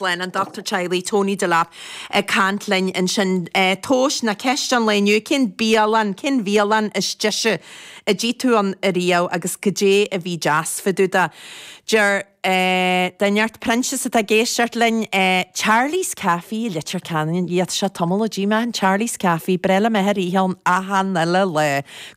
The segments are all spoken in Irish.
Glen, an Dochtúir Teaghlaigh Tony Delap ag caint linn ansin. Tomhais na ceiste an lae inniu, cén bialann, cén bhialann is deise a d'ith tú ann i riamh agus goidé a bhí deas fá dtaobh de? Deir de neart Proinsias atá ag éisteacht linn, Charlie's Café i Leitir Ceanainn tá sé tamall ó d'ith mé ann, Charlie's Café, bhreá liom a bheith ag ithe ann achan uile lá,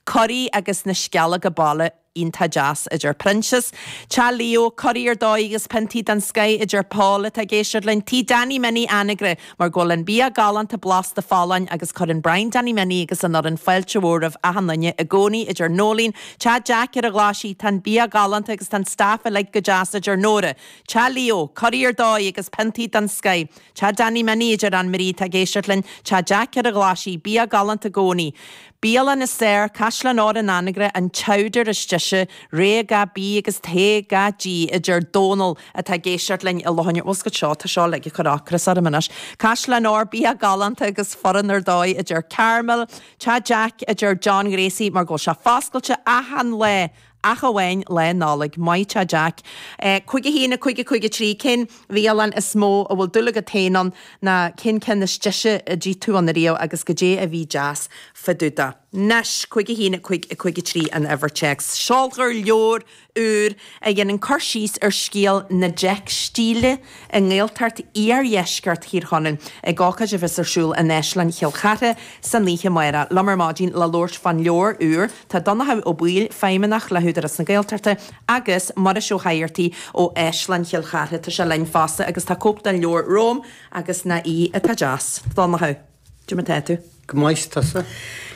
curaí agus na sceallóga baile. iontach deas a deir Proinsias, Teach Leo, curaí ar dóigh agus piontaí den scoth a deir Paul atá ag éisteacht linn, Tigh Danny Minnie in Anagaire mar go bhfuil an bia galánta blasta folláin agus cuireann Brian Danny Minnie agus an fhoireann fáilte mhór roimh achan duine i gcónaí a deir Noeleen, Teach Jack ar an Ghlaisigh tá an bia galánta agus tá an staff uilig go deas a deir Nóra, Teach Leo, curaí ar dóigh agus piontaí den scoth, Teach Danny Minnie a deir Ann Marie atá ag éisteacht linn, Teach Jack ar an Ghlaisigh, bia galánta i gcónaí. Bialann is fearr, Caisleán Óir in Anagaire, an t-amharc is deise, rogha gach bí agus togha gach dí, a deir Dónall, atá ag éisteacht linn i láthair na bhfuascailt seo. Tá seo uilig ag cur ocras orm anois. Caisleán Óir, bia galánta agus foireann ar dóigh, a deir Carmel. Teach Jack, a deir John Ghracie, mar go bhfuil sé foscailte achan lá ach amháin Lá Nollag. Maith thú Jack. 51553, Cén bhialann is mó a bhfuil dúil agat féin ann ná cén ceann is deise a d'ith tú ann ariamh agus goidé a bhí deas fá dtaobh de? Anois, 51553, An Uimhir Téacs Seolfar leabhar úr a dhéanann cur síos ar scéal na dteicstílí, i nGaeltacht iardheisceart Thír Chonaill ag ócáid a bheas ar siúl in Áislann Chill Chartha san oíche amárach. Liom ar maidin le labhairt fán leabhar úr. Tá Donnchadh Ó Baoill, Feidhmeannach le hÚdarás na Gaeltachta agus Muiris Ó hÉigeartaigh ó Áislann Chill Chartha, tá sé linn fosta agus tá cóip den leabhar romham agus nach í atá deas. Donnchadh. Goidé mar tá tú. Go maith tusa.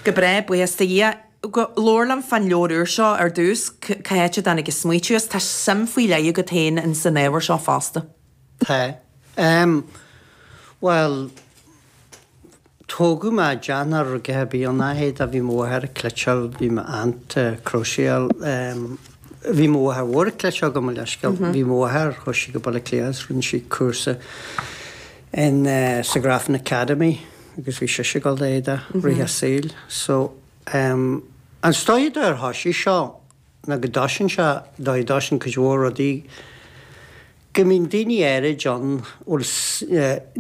Go breá, buíochas do Dhia. Labhair liom fán leabhar úr seo ar dtús, cá háit a dtáinig an smaoitiú as? Tá suim faoi leith agat féin ins an ábhar seo fosta. Tá. Em. Bhuel, tógadh mé i dteach na rugaithe, b'í an leithéid a bhí mo mháthair a' cleiteáil, bhí m'aunt a' cróiseáil, em, bhí mo mháthair mhór a' cleiteáil gabh mo leithscéal, bhí mo mháthair, chuaigh sí go Baile Átha Cliath agus rinne sí cúrsa, in sa Grafton Academy agus bhí sise ag gabháil dó i rith a saoil so em is dóiche an dóigh ar thoisigh seo ná go dtoiseann sé an dóigh a dtoiseann cuid mhór rudaí go mbíonn daoine áirid ann bhuel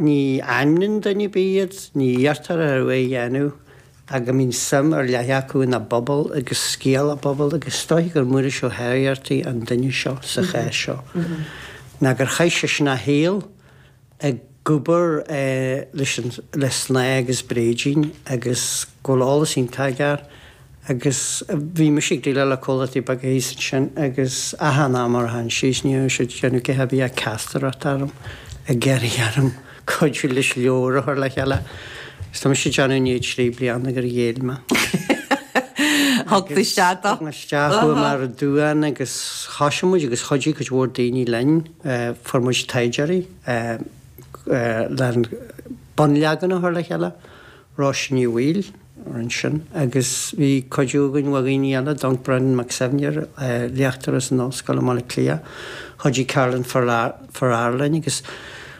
ní ainmníonn duine ar bith iad ní iarrtar orthu é a dhéanamh ach go mbíonn suim ar leith acu ina bpobal agus scéal a bpobal agus is dóiche gur Muiris Ó hÉigeartaigh an duine seo sa chás seo ná gur chaith seisean a shaol ag obair leis an le snáth agus bréidín agus go bhfuil eolas iontach aige agus bhí mise ag déileáil le comhlachtaí beaga thíos ansin agus achan am ar tháin sí is ní raibh siad déanamh go heavy ag castar ort orm ag iarraidh orm cuidiú leis leabhar a chur le chéile agus tá mise ag déanamh i ndiaidh trí bliana gur ghéill mé thug tú isteach dó? thug mé isteach chuaigh mé ar an duán agus thoisigh muid agus chuidigh cuid mhór daoine linn. Fuair muid taighdeoirí lena bunleagan a chur le chéile, Róise Ní Bhaoill a rinn sin agus bhí cuidiú againn ó dhaoine eile, Dunk, Brendan Mac Suibhne, léachtóir as an Ollscoil i mBaile Átha Cliath, chuidigh Carolyn Farrar linn agus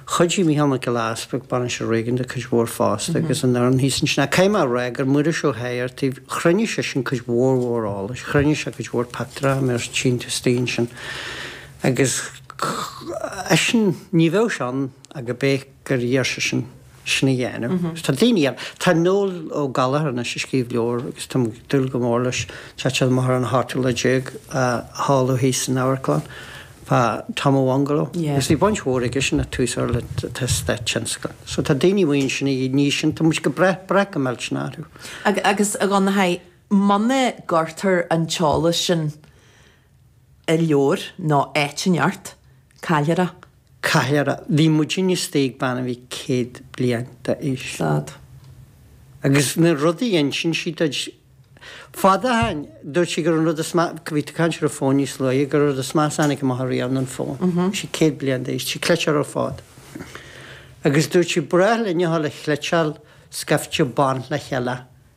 chuidigh Mícheál Mac Giolla Easpaig, Bainisteoir Réigiúnach cuid mhór fosta agus an fhoireann thíos ansin. Caithfidh mé a rá gur Muiris Ó hÉigeartaigh, chruinnigh seisean cuid mhór mhór eolais, chruinnigh sé cuid mhór pictiúr, a mbeadh síntiús daoin sin. Agus eisean, ní bheadh sé ann ach gurb é gur iarr seisean sin a dhéanamh. Tá daoine eile, tá Noel Ó Gallchóir anois ag scríobh leabhar agus táim ag dúil go mór leis, teacht amach ar an cheathrú lá déag á sheoladh thíos san amharclann fá Tom Mac Fhionnghaile. Agus bhí baint mhór aige sin ag tús ár eastát tionscail. So tá daoine mar sin a ní sin, tá muid ag brath, brath go millteanach orthu. Agus a Dhonncha, muna gcuirtear an t-eolas sin, ar leabhar nó áit inteacht, caillfear é. Caillfear é, bhí muid istigh ag bean a bhí céad bliain d'aois. Sea. Agus na rudaí a d'inis sí dúinn, fad ó shin, dúirt sí gur an rud is meas, bhí tú ag caint ar an fón níos luaithe, gur an rud is measa a tháinig amach riamh an fón. Bhí sí céad bliain d'aois, sí ag cleiteáil ar fad. Agus dúirt sí, ba bhreá linn a ghoil a chleiteáil scaifte ban le chéile